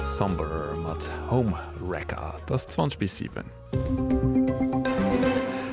Somber mat Home Wrecker. Et ass 20 bis 7.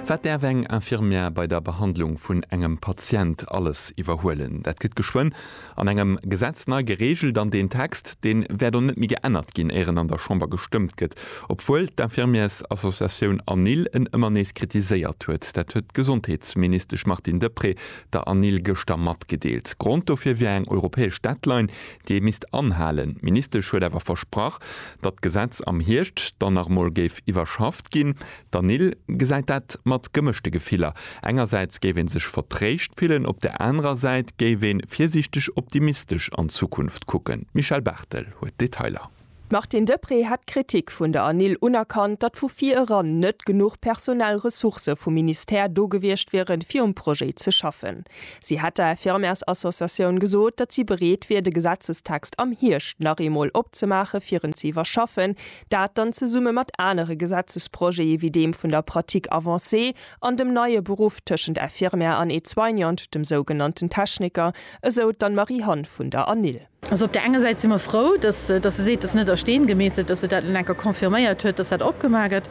Wat däerf eng Infirmière bei der Behandlung vun engem Patient alles iwwerhuelen? Dat gëtt geschwënn an engem Gesetz nei gereegelt an deen Text, deen wäert och net méi geännert ginn, éier en an der Chamber gestëmmt gëtt, obwuel d'Infirmières-Associatioun ANIL en ëmmer nees kritiséiert huet. Dat huet d'Gesondheetsministesch Martine Deprez der ANIL gëschter matgedeelt. Grond dofir wier eng europäesch Deadline, déi ee misst anhalen. D'Ministesch huet awer versprach, datt d'Gesetz am Hierscht dann nach emol géif iwwerschafft ginn. D'ANIL gesäit dat mat gemëschte Gefiller. Engersäits géif ee sech vertréischt fillen, op der anerer Säit géif ee virsiichteg optimistesch an d'Zukunft kucken. D'Michèle Barthel huet d'Detailer. D'Martine Deprez hätt d'Kritik vun der Anil unerkannt, datt vu vir eran net genuch personell Ressourcë vum Ministère do gewiescht wieren, fir um Projet ze schaffen. Si hätt der Infirmärsassociatioun gesot, datt si bereet wier, de Gesetzestext am Hierscht nach eemol opzemaachen, fir en ze iwwerschaffen, dat dann zesumme mat anere Gesetzesprojete wéi deem vun der Pratique avancée an dem neie Beruff tëschent Infirmière an Aide-soignante, dem sougenannten Techniker, esou d'Anne-Marie Hann vun der Anil. Also op där enger Säit si mer frou, dass se seet, et ass net a Steen gemeesselt, dass se dat elo nach eng Kéier confirméiert huet, dass dat opgemaach gëtt.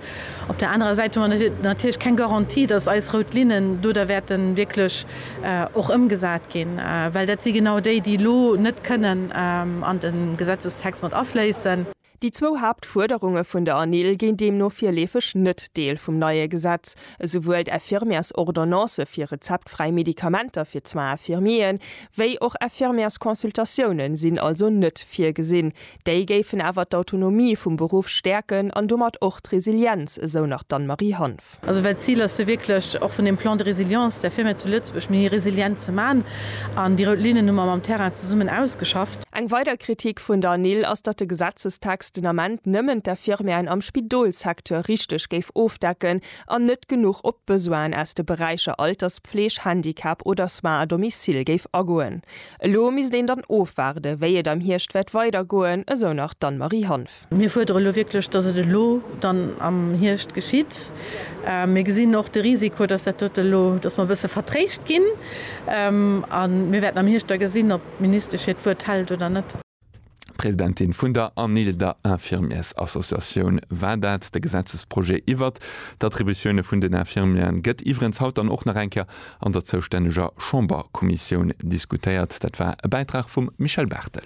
Op där anerer Säit hu mer natierlech keng Garantie, dass eis rout Linnen do da wäerte wierklech och ëmgesat ginn, well dat si genau déi, déi elo net kënnen an de Gesetzestext mat afléissen. Déi zwou Haaptfuerderunge vun der ANIL ginn deemno virleefeg net Deel vum neie Gesetz. Esouwuel d'Infirmièresordonnance fir rezeptfräi Medikamenter fir d'Soins infirmiers wéi och Infirmièresconsultatioune sinn also net virgesinn. Déi géifen awer d'Autonomie vum Beruff stäerken an domat och d'Resilienz, esou nach d'Anne-Marie Hanff. Also well d'Zil ass jo wierklech, och vun deem Plan de résilience, der Firma zu Lëtzebuerg méi resilient ze maachen. An déi rout Linnen hu mer mam Terrain zesummen ausgeschafft. Eng weider Kritik vun der NIL ass, datt de Gesetzestext den Ament nëmmen d'Infirmièren am Spidolssecteur richteg géif ofdecken an net genuch op d'Besoinen aus de Beräicher Alterspfleg, Handicap oder Soins à domicile géif agoen. Elo misst een dann ofwaarden, wéi et am Hierscht wäert weidergoen, esou nach d'Anne-Marie Hanff. Mir fuerdere elo wierklech, dass et elo dann am Hierscht geschitt. Mir gesinn och de Risiko, dass dat dote elo, dass mer e bësse vertréischt ginn. A mir wäerten am Hierscht da gesinn, ob d'Ministesch hiert Wuert hält oder net. Presidentin vun der ANIL, der Infirmiers-Associatioun, war dat. De Gesetzesprojet iwwert d'Attributioune vun den Infirmieren gëtt iwwerens haut dann och nach eng Kéier an der zoustänneger Chamberkommissioun diskutéiert. Dat war e Bäitrag vum Michel Barthel.